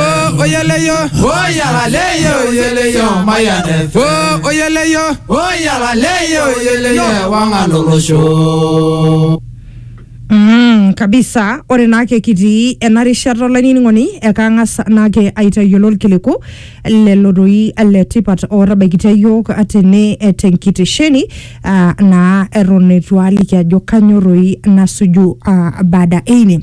ó oyele yó. ó yàrá lẹ́yìn òyele yó ọmọ yà ní fẹ́. ó oyele yó. ó yàrá lẹ́yìn òyele yó ẹ̀wọ̀n ń alòrò ṣó. Mm, kabisa ore naake kitii ena rishata olainining'oni ekang'as naake aitayiolo ilkiliku lelo doi le tipat ootabaikitia iyiook tene eh, tenkitesheni ah, naa eton eitu aaliki ajo kanyioo doi nasuju ah, baada eine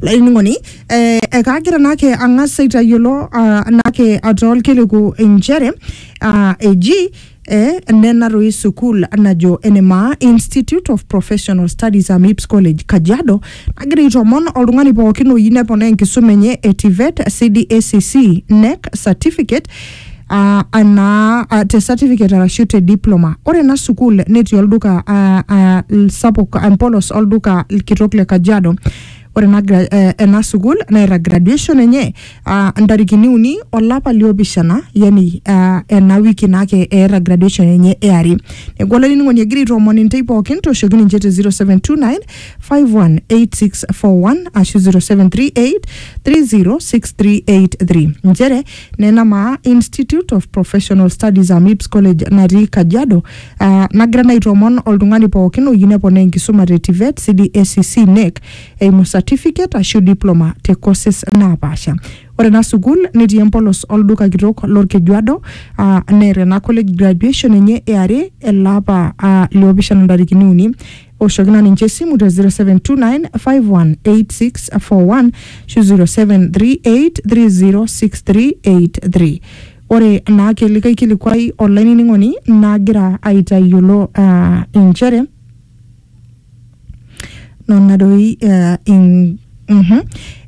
olainining'oni eh, ekaagira naake ang'as aitayiolo ah, naake ataa olkiliku inchere ah, eji eh, nena toi sukuul najo enemaa Institute of Professional Studies am Ips College Kajiado nagira aitomon oltung'ani pookin oyieu neponaa enkisuma enye e TVET, CDACC, NEC certificate ah, anaa ah, te certificate arashu te diploma ore ena sukuul netii olduka ah, ah, sapuk empolos olduka kitok le Kajiado Ore ena, gra- eh, ena sukuul nairag graduation enye ah, ntarikini uni olapa liopishana yani ah, ena wiki naake eeta graduation enye eari neeku olainining'oni egira aitoomon intei pookin tooshoki ninche te 0729 518641 ashu 0738 30683 nchere nena maa Institute of Professional Studies AMIPS College natii Kajiado uh, nagira naa aitoomon oltung'ani pookin oyieu neponaa enkisuma te TVET, CDACC, NEC eimu certificate ashu diploma te courses naapaasha. Ore ena sukuul netii empolos olduka kitok lorkejuado uh, neeta ena college graduation enye eare ele apa uh, liopishana ntarikini uni oshoki na ninche esimu te 0729518641 ashu 0738306383 ore naake likae kilikuai olainining'oni nagira aitayiolo ah, inchere nona doi eh, in, mhm,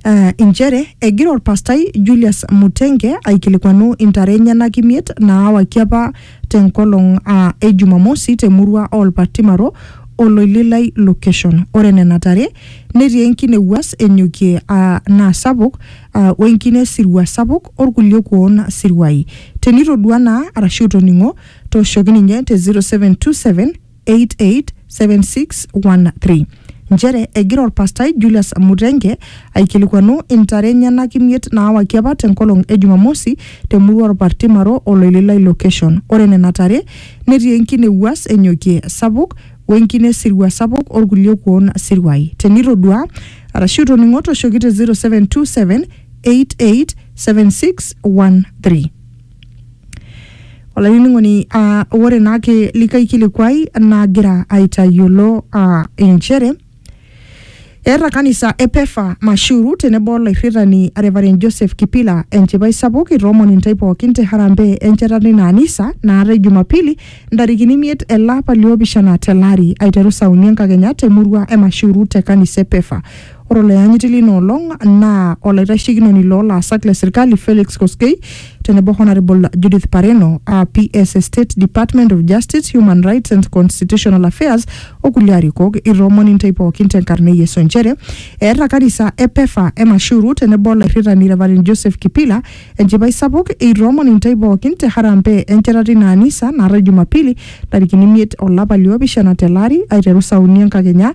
eh, inchere egira orpastai Julius Mutenge aikilikuanu intare enyenak imiet naawaki apa tenkolong aa e Jumamosi te murua oo Lpartimaro o Loililai location. Ore nena tare netii enkine ewuas enyokie aa naa sapuk aa we nkine sirua sapuk o lkulie kuoon siruai. Tenitoduaa naa arashu itoning'o tooshoki ninye te 0727 887613 nchere egira olpastai Julius Mutenge aikilikuanu intare enyenak imiet naawaki apa tenkolong e Jumamosi temurua Olpartimaro Oloililai location. Ore nena tare netii enkine wuas enyokie sapuk wenkine sirua sapuk olkulie kuon siruai. Tenitodua arashu itoning'o toshoki te 0727 887613. olainining'oni ah, ore naake likae kilikuai nagira aitayiolo ah, inchere eeta kanisa e pefa mashuru tenebo olairritani Reverend Joseph Kipila enchipai sapuk itoomon intae pookin te harambee enchetata ina anisa naatae jumapili ntarikini imiet ele apa liopishana tele ari aiteru saa uni enkakenya temurua e mashuru te kanisa e pefa Ore oloyanyiti lina olong naa olaitashekinoni loo laasak le serkali Felix Koskei tenebo Honourable Judith Pareno aa PS e State Department of Justice, Human Rights and Constitutional Affairs o kulie arikok. Itoomon intae pookin tenkarna e Yesu nchere eeta kanisa e Pefa e Mashuru tenebo olairritani Reverend Joseph Kipila enchipai sapuk eitoomon intae pookin te harambee enchetata ina anisa naatae Jumapili ntarikini imiet olapa liopishana tele ari aiteru saa uni enkakenya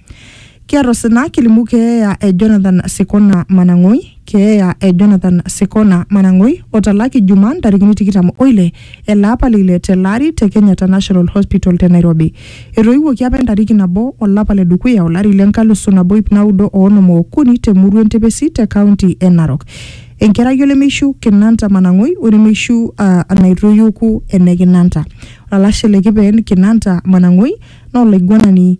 Kiata osina kilimu keeya e Jonathan Sikona Manang'oi, keeya e Jonathan Sikona Manang'oi otalaki Juma ntarikini tikitam oile ele apa le ile tele ari te Kenyatta National Hospital te Nairobi. Etoiwuoki apa entariki nabo olapa le dukuya olari le nkalusu nabo ip naudo o onom ookuni te murua Entepesi te kaunti e Narok. Enkerai olemeishu Kinanta Manang'oi onemeishu uh, naitoiuku ene Kinanta. Olalashe le Kipeen Kinanta Manang'oi naa olaiguanani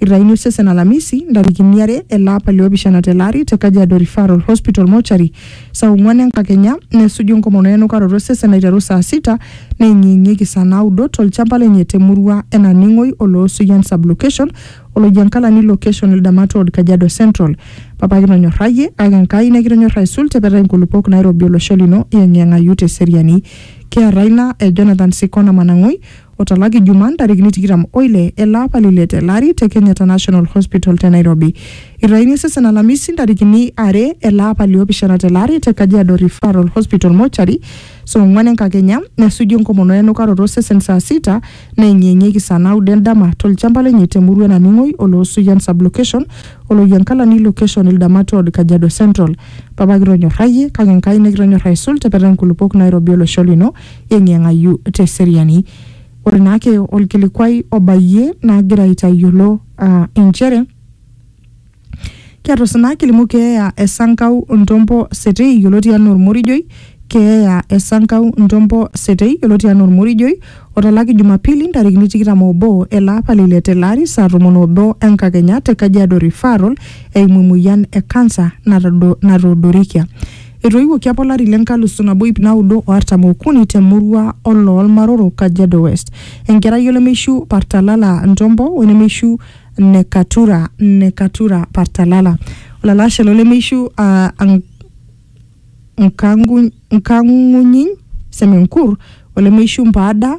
Eitayuni osesen Alamisi, ntarikini are ele apa le opishana tele ari te Kajiado Referral Hospital Mortuary saa ong'uan enkakenya nesuju enkomono enukaroto osesen aiteru saa sita neeng'ieng'ieki saa naudo tolchamba lenye te murua e Naning'oi o Loosuyian Sublocation o Loijankalani Location Ildamat Ward Kajiado Central. Papa kitonyorrayie kake Enkai nikitonyorra aisul te petai nkulupuok nairobi olosho lino iyeng'iyeng'ayu te seriani. Kiata ina, ejo Nathan Sikona Manang'oi, otalaki Juma ntarikini tikitam oile ele apa lile tele ari te Kenyatta National Hospital te Nairobi. Eitayuni osesen Alamisi ntarikini are ele apa liopishana tele ari te Kajiado Referral Hospital Mortuary saa ong'uan enkakenya nesuju enkomono enukaroto osesen saa sita neyeng'iyeng'ieki saa naudo endama tolchamba lenye te murua e Naning'oi Oloosuyian Sublocation o Loyiankalani Location Ildamat Ward Kajiado Central. Papa kitonyorrayie kake Enkai nikitonyorr aisul tepeta nkulupuok Nairobi olosho lino eeng'ieng'ayu te seriani. Ore naake olkilikuai obayie nagira aitayiolo aa inchere ketusina kilimu keeya e Sankau Ntompo Setei yioloti anaa Ormorijoi, keeya e Sankau Ntompo Setei yioloti anaa Ormorijoi otalaki Jumapili ntarikini tikitam oobo ele apa le ile tele ari saa tomon oobo enkakenya te Kajiado Referral eimu emoyian e kansa natoodorikia. Etoiwuoki apa olari le nkalusu nabo iip naudo o artam okuni te murua oloo Lmaroro, Kajiado West. Enkerai olemeishu Partalala Ntombo o enemeishu Nekatura, Nekatura Partalala. Olalashe lo lemeishu aa Nk- Nkangu- Nkangunyiny Semenkur, olemeishu Mpaada,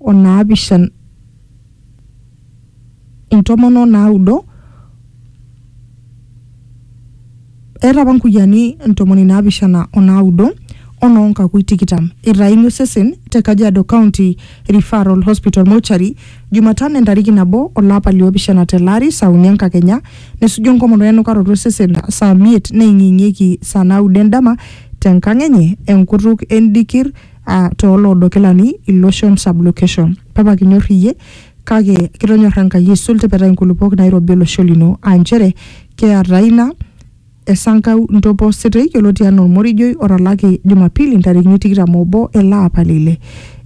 o naapishan intomon o naudo eeta apa nkuyiani ntomoni naapishana o naudo o noo nkakui tikitam eitayuni osesen te Kajiado County Referral Hospital Mortuary Jumatano entariki nabo olapa liopishana tele ari saa uni enkakenya nesuju enkomono enukaroto osesen saa miet neing'ieng'ieki saa naudo endama te nkang enye enkutuk endikir uh, tooloodo kilani iloshon sublocation papa kinyor iyie kake kitonyorra enkai aisul tipeta inkulupuok nairobi olosho lino aa nchere keeta ina esankau ntopo sitei yioloti anaa olmorijoi otalaki jumapili ntarikini tikitam obo ele apa lile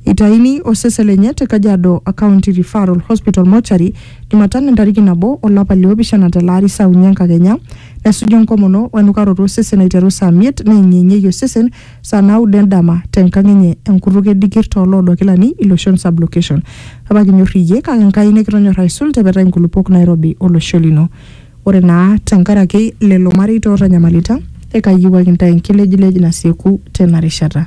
itaini osesen lenye te kajiado county referral hospital mochari jumatano entariki nabo olapa liopishana tele ari saa uni enkakenya nesuju enkomono wenukaroto osesen aiteru saa miet neeng'ieng'ieki osesen saa naudo endama tenkang enye enkutuk e Dikir too loodo Kilani, Iloshon Sub-location. Papa kinyorr iyie kake Enkai nikitonyorra aisul te petai nkulupuok nairobi o losho lino. Ore naa tenkaraki lelo mareita ootanyamalita, ekaiyiewuaki intae enkilejilej nasieku tena rishata.